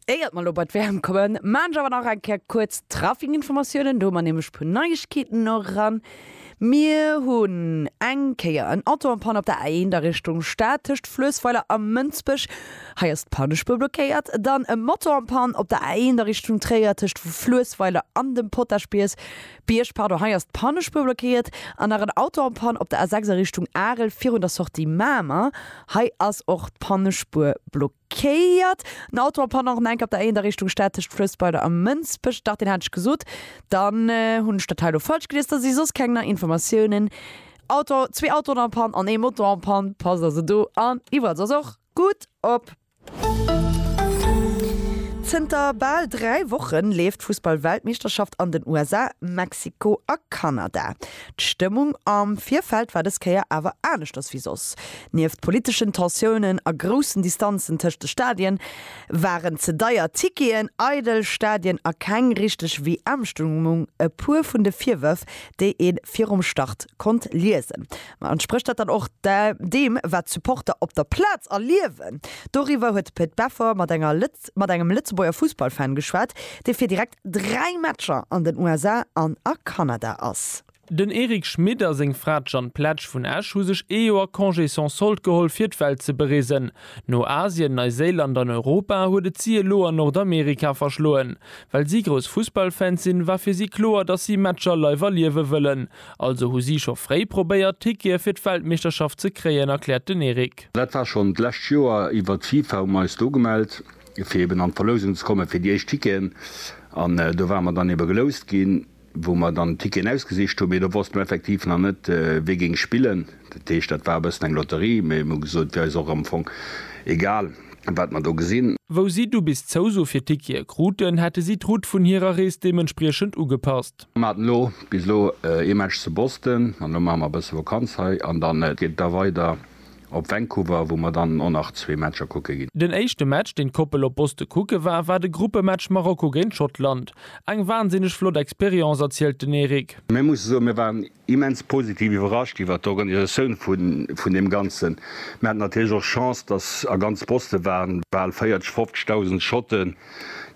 Éiert mer elo bei d'Wäermt kommen, maan ech awer nach eng Kéier kuerz d'Traffic-Informatiounen. Do hu mer nämlech e puer Neiegkeeten no ran. Mir hunn eng Kéier en Auto en Panne op der A1 a Richtung Stad tëscht Fluessweiler a Mënsbech. Hei ass d'Pannespuer blockéiert. Dann e Moto en Panne op der A1 a Richtung Tréier tëscht Fluessweiler an dem Potaschbiess. Bierg, pardon, hei ass d'Pannespur blockéiert an nach en Auto en Panne op der A6 a Richtung Arel virun der Sortie Mamer. Hei ass och d'Pannespur blockéiert. En Auto en Panne och nach enk op der A1 a Richtung Stad tëscht Fluessbeiler a Mënsbech. Dach, deen hat ech gesot. Dann hunn ech dat hei elo falsch gelies. Da si soss keng nei Informatiounen. Auto, zwee Autoen en Panne an ee Moto en Panne. Passt also do an iwwerall soss och gutt op. Zënter bal 3 Woche leeft d'Fussball-Weltmeeschterschaft an den USA, Mexiko a Kanada. D'Stëmmung am Virfeld war dës Kéier awer aneschters wéi soss. Nieft politeschen Tensiounen a groussen Distanzen tëscht de Stadien, waren ze deier Ticketen, eidel Stadien a keng richteg WM-Stëmmung e puer vun de Virwërf, déi ee virum Start konnt liesen. Mä entsprécht dat dann och deem, wat d'Supporter op der Plaz erliewen? Doriwwer huet de Pit Beffer mat enger mat engem Lëtzebuerger Fussballfan geschwat, dee fir direkt dräi Matcher an den USA an a Kanada ass. Den Eric Schmit a seng Fra d'Jeanne Pletsch vun Esch hu sech ee Joer Congé sans solde geholl, fir d'Welt ze bereesen. No Asien, Neiséiland an Europa huet et si elo an Nordamerika verschloen. Well si grouss Fussballfans sinn, war fir si kloer, datt si Matcher live erliewe wëllen. Also hu si scho fréi probéiert, Tickete fir d'Weltmeeschterschaft ze kréien, erkläert den Eric. Dat war schonn d'lescht Joer iwwert d'FIFA, hu mer eis do gemellt, fir eben an d'Verlousung ze kommen, fir déi éischt Ticketen. An do ware mer dann ebe geloust ginn, wou mer dann d'Ticketen ausgesicht hunn. Mee do wosste mer effektiv nach net, wie géing spillen. Dat heescht, dat war e bëssen eng Lotterie. Mee mir hu gesot, wier eis och am Fong egal, wat mer do gesinn. Wou si du bis d'Zouso fir d'Tickete kruten, hätte si d'Route vun hirer Rees deementspriechend ugepasst. Mir haten elo bis elo ee Match zu Boston an elo maache mer e bësse Vakanz hei an dann geet et da weider op Vancouver, wou mer dann och nach zwee Matcher kucke ginn. Den éischte Match, deen d'Koppel op Boston kucke war, war de Gruppematch Marokko géint Schottland. Eng wansinneg flott Experience, erzielt den Eric. Mir musse soen, mir waren immens positiv iwwerrascht iwwert d'Organisatioun vun deem Ganzen. Mir haten natierlech och Chance, dass a ganz Boston waren bal 40, 50.000 Schotten,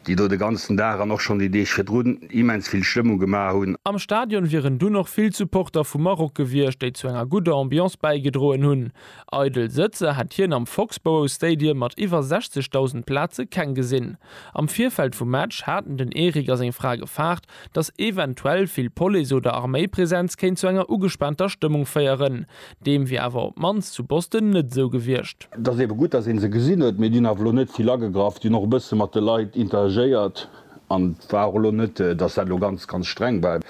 déi do de ganzen Dag an och schonn déi Deeg virdrun immens vill Stëmmung gemaach hunn. Am Stadion wieren dunn och vill Supporter vu Maroc gewiescht, déi zu enger gudder Ambiance bäigedroen hunn. Eidel Sëtzer hätt hien am Foxborough Stadium mat iwwer 60.000 Plaze keng gesinn. Am Virfeld vum Match haten den Eric a seng Fra gefaart, datt eventuell vill Police oder Arméipresenz kéint zu enger ugespaanter Stëmmung féieren. Deem wier awer op d'mannst zu Boston net esou gewiescht. Et ass eebe gutt, datt ee se gesinn huet, mee déi hunn awer elo net vill agegraff. Déi hunn och e bësse mat de Leit interagéiert an et war och elo net, datt dat elo ganz, ganz streng war.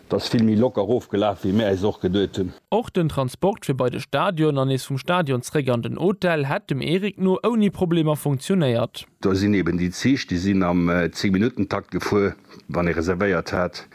Et ass vill méi locker ofgelaf, wéi mir äis och geduet hunn. Och den Transport fir bei de Stadion an nees vum Stadion zréck an den Hotel hätt dem Eric no ouni Problemer funktionéiert. Do sinn eben déi Zich, déi sinn am Zéngminuttentakt gefuer, wann ee reservéiert hat,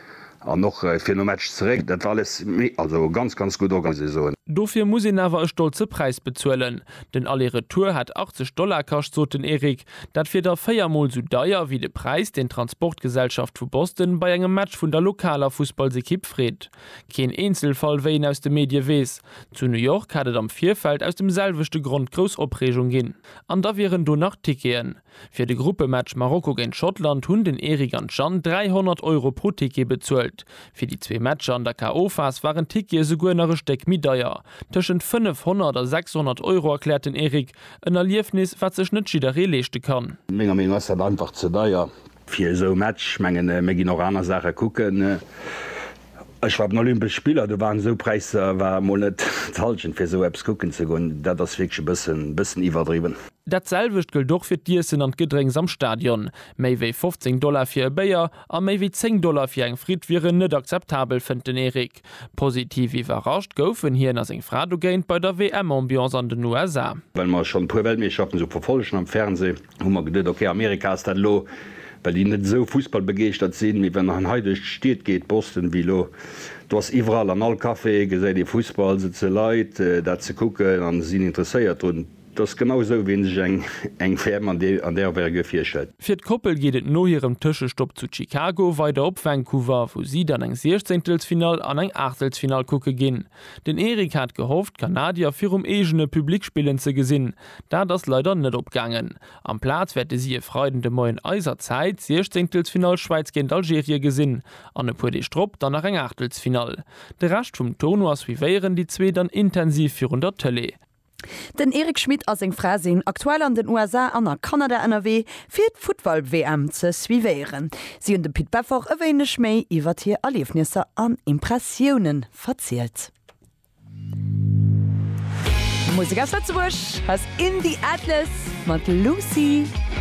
an och fir nom Match zeréck. Dat war alles méi, also ganz, ganz gutt orga, muss ee soen. Dofir muss een awer e stolze Präis bezuelen. Den Aller-Retour hätt 80 Dollar kascht, sot den Eric. Dat wier da véier Mol sou deier wéi de Präis, deen d'Transportgesellschaft vu Boston bei engem Match vun der lokaler Fussballsekipp freet. Keen Eenzelfall, wéi een aus de Medie weess. Zu New York hätt et am Virfeld aus dem selwechte Grond grouss Opreegung ginn. An da wieren do nach Ticketen. Fir de Gruppematch Marokko géint Schottland hunn den Eric an d'Jeanne 300 Euro pro Ticket bezuelt. Fir déi zwee Matcher an der KO-Phas waren d'Tickete souguer nach e Stéck méi deier, tëschent 500 a 600 Euro, erkläert den Eric. En Erliefnis, wat sech net jidderee leeschte kann. Menger Meenung ass dat einfach ze deier. Fir esou e Match, ech mengen mir ginn och aner Saache kucken. Ech war op den Olympesch Spiller, do waren esou Präisser, war mol net d'Hallschent fir esou eppes kucken ze goen. Dat ass wierklech e bëssen iwwerdriwwen. Dat selwecht gëllt och fir d'Iessen an d'Gedrénks am Stadion. Méi wéi 15 Dollar fir e Béier a méi wéi 10 Dollar fir eng Fritt wieren net akzeptabel, fënnt den Eric. Positiv iwwerrascht goufen hien a seng Fra dogéint bei der WM-Ambiance an den USA. Well mer schonn e puer Weltmeeschterschaften esou verfollegen am Fernsee, hu mer geduet, ok, Amerika ass dat elo, well déi net esou fussballbegeeschtert sinn, mee wann en hei duerch d'Stied geet, Boston wéi elo, do ass iwwerall an all Café gesäit ee Fussball, sëtze Leit dat ze kucken a sinn interesséiert drun. Et ass genau esou, wéi een sech eng WM an där Envergure virstellt. Fir d'Koppel geet et no hirem Tëschestopp zu Chicago weider op Vancouver, wou si dann eng Siechzéngtelsfinall an eng Aachtelsfinall kucke ginn. Den Eric hat gehofft, d'Kanadier virum eegene Public spillen ze gesinn. Dat ass leider net opgaangen. Amplaz wäerte si e Freiden de Moien eiser Zäit d'Siechzeengtelsfinall Schwäiz géint Algerie gesinn an e puer Deeg drop dann nach eng Aachtelsfinall. De Rescht vum Tournoi suivéieren déi zwee dann intensiv virun der Tëlee. Den Eric Schmit a seng Fra sinn aktuell an den USA an a Kanada ënnerwee fir d'Futtball-WM ze suivéieren. Si hunn dem Pit Beffort e wéineg méi iwwert hir Erliefnisser an Impressioune verzielt. Musek aus Lëtzebuerg, hei ass In The Atlas mat Lucy.